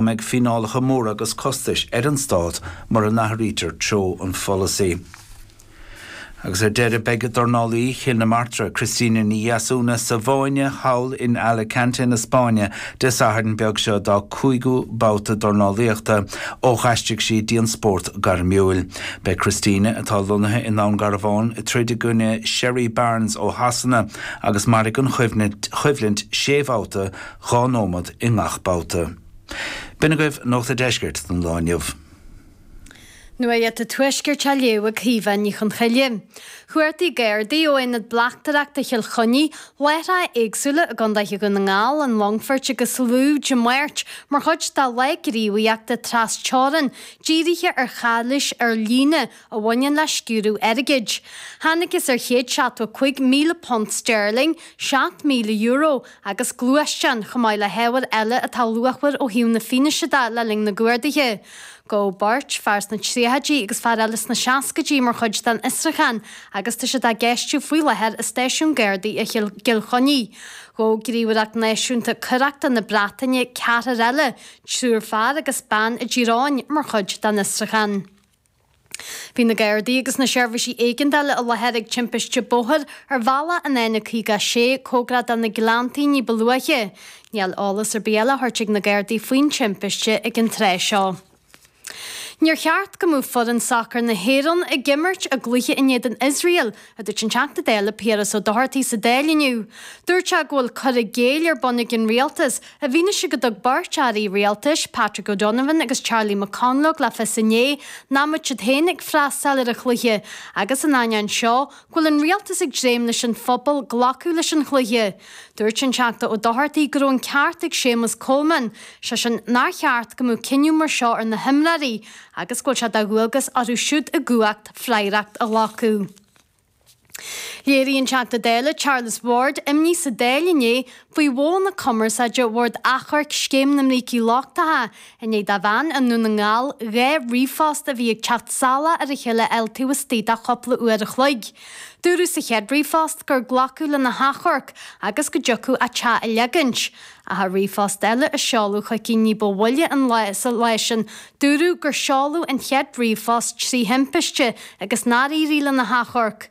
go mbeidh fíneálacha móra agus costais ar an Stát mura n-athraítear treo an pholasaí. Agus ar deireadh beidh dornálaí Chill na Martra, Christina Ní Dheasúna, sa bhfáinne thall in Alicante na Spáinne Dé Sathairn beag seo dá cúigiú babhta dornálaíochta ó d'aistrigh sí dtín spórt gairmiúil. Beidh Christina, atá lonnaithe i nDún Garbhán, ag troid i gcoinne Sherrie Barnes ó Shasana agus mairfidh an choimhlint sé bhabhta, Dhá nóimead i ngach babhta. B'in agaibh Nuacht an Deiscirt don lá inniu. Nuacht an Tuaiscirt á léamh ag Caoimhe Ní Chonchoille. Chuartaigh Gardaí ó Aonad Bleachtaireachta Chill Chainnigh láithreáin éagsúla i gCondae Dhún na nGall, an Longfoirt agus Lú Dé Máirt mar chuid dá lá gníomhaíochta tras-teorann, dírithe ar chalaois ar líne a bhaineann le sciúradh airgid. Thángthas ar £105,000 sterling, €7,000, agus gluaisteán, chomh maith le hábhair eile atá luachmhar ó thaobh na fianaise de le linn na gcuardaithe. Gabhadh beirt, fear sna tríochaidí agus fear eile sna seascaidí mar chuid den fhiosrúchán agus tá siad á gceistiú faoi láthair i Stáisiún Gardaí i gCill Chainnigh. Ghabh gníomhaireacht náisiúnta coireachta na Breataine ceathrar eile, triúr fear agus bean i dTír Eoghain mar chuid den fhiosrúchán. Bhí na Gardaí agus na seirbhísí éigeandála i láthair ag timpiste bóthair ar bhealach an N56, cóngarach do na Gleanntaí, ní ba luaithe. Níl eolas ar bith eile le tabhairt ag na Gardaí faoin timpiste ag an tráth seo. Níor cheart go mbeadh foireann sacair na hÉireann ag imirt a gcluiche in éadan Iosrael a dúirt an Teachta Dála Piaras Ó Dochartaigh sa Dáil inniu. Dúirt sé go bhfuil cur i gcéill ar bun ag an Rialtas, i bhfianaise go dtug beirt airí rialtais, Patrick O'Donovan agus Charlie McConalogue, le fios inné nach mbeadh siad féin ag freastal ar an chluiche, agus, in ainneoin seo, go bhfuil an Rialtas ag dréim leis an phobal glacadh leis an chluiche. Dúirt an Teachta Ó Dochartaigh go raibh an ceart ag Séamus Coleman, sé sin, nár cheart go mbeadh cinneadh mar seo ar na himreoirí, agus go bhfuil sé de dhualgas orthu siúd i gcumhacht freagracht a ghlacadh. Léirigh an Teachta Dála, Charles Ward, imní sa Dáil inné faoi mhodh na cumarsáide bord achomhairc scéim na mbrící lochtacha i ndiaidh do bhean i nDún na nGall dhá ríomhphost a bhí ag teacht salach ar a chéile a fháil taobh istigh de chúpla uair a chloig. Dúradh sa chéad ríomhphost gur glacadh lena hachomharc agus go dtiocfadh a teach a leagaint. Ach i ríomhphost eile a seoladh chuici ní ba mhoille an lá sin, dúradh gur seoladh an chéad ríomhphost trí thimpiste agus nár éirigh lena hachomharc.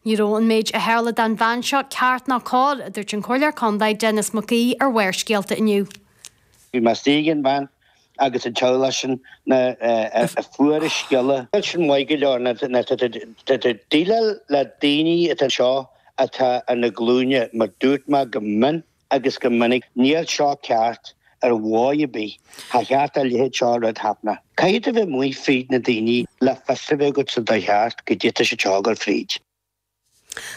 Ní raibh an méid a tharla don bhean seo ceart ná cóir, a dúirt an Comhairleoir Contae Denis Mac Aoidh ar Bharrscéalta inniu. Bhí mé istigh ag an bhean agus an teaghlach sin nuair a fuair siad an scéala. Níl sin maith go leor, ná tada. ag déileáil le daoine atá anseo atá ar a nglúine, mar dúirt mé go mion. agus go minic, níl seo ceart ar dhóigh ar bith, cha cheart a leithéid seo a rud thaithne. Caithfidh tú bheith amuigh fríd na daoiní le fios a bheith agat sa dóigh cheart caidé tá siad ag gabháil fríd.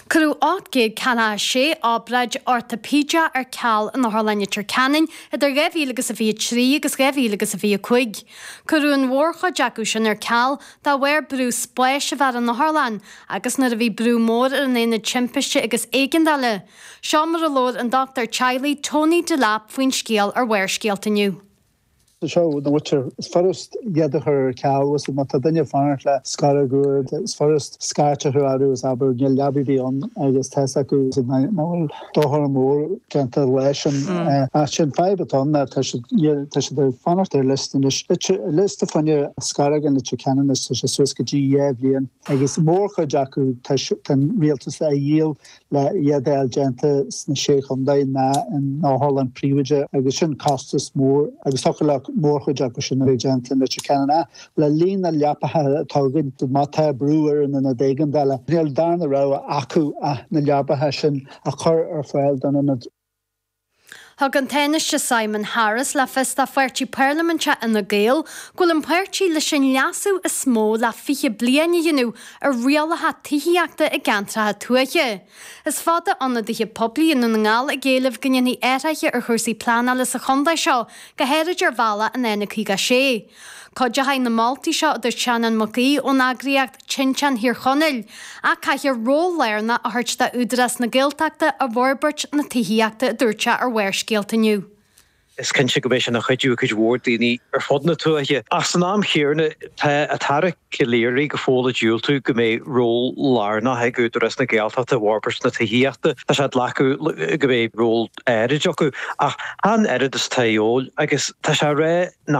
Cuireadh 846 obráid ortaipídea ar ceal in Otharlann Leitir Ceanainn idir 2023 agus 2025. Cuireadh an mhórchuid acu sin ar ceal de bharr brú spáis a bheith ar an otharlann agus nuair a bhí brú mór ar an Aonad Timpiste agus Éigeandála, Seo mar a labhair an dochtúir teaghlaigh Tony Delap faoin scéal ar Bharrscéalta inniu. Seo na hothair is furast iad a chur ar ceal, is má tá duine ag fanacht le scoróg úr, is furast scairt a chur orthu is abair níl leabaidh ar bith ann agus tá's acu nach bhfuil dochar mór déanta leis an áit sin. Fadhb atá ann ná tá siad ag fanacht ar liosta anois. Liosta fá choinne scoróg i Leitir Ceanainn is tá sé suas go dtí dhá bhliain agus mórchuid acu tá an rialtas a dhíol. le hiad a fháil déanta sna Sé Chontae ná in otharlann phríobháideach agus sin costas mór agus thiocfadh le mórchuid acu sin a bheith déanta i Leitir Ceanainn ach le líon na leapacha atá againn má tá brú ar an Ionad Éigeandála níl darna rogha acu ach na leapacha sin a chur ar fáil don Ionad. Thug an Tánaiste Simon Harris le fios dá pháirtí parlaiminte Fhine Gael go bhfuil an páirtí leis an leasú is mó le 20 bliain a dhéanamh ar rialacha tithíochta i gceantracha tuaithe. Is fada ionadaithe poiblí i nDún na nGall ag éileamh go ndéanfaí athruithe ar chúrsaí pleanála sa chontae seo, go háirid ar bhealach an N56. Cuideochaidh na moltaí seo, a dúirt Seanán Mac Aoidh ón eagraíocht Tinteán Thír Chonaill, ach caithfear ról lárnach a thabhairt d'Údarás na Gaeltachta i bhforbairt na tithíochta, a dúirt sé ar Bharrscéalta inniu. Is cinnte go mbeidh sé ina chuidiú ag cuid mhór daoine ar fud na tuaithe, ach san am chéanna tá an tAire Calleary go fóill ag diúltú go mbeidh ról lárnach ag Údarás na Gaeltachta i bhforbairt na tithíochta. Tá sé ag glacadh go mbeidh ról áirid acu, ach chan oiread is atá de dhíobháil, agus tá sé ag rá nach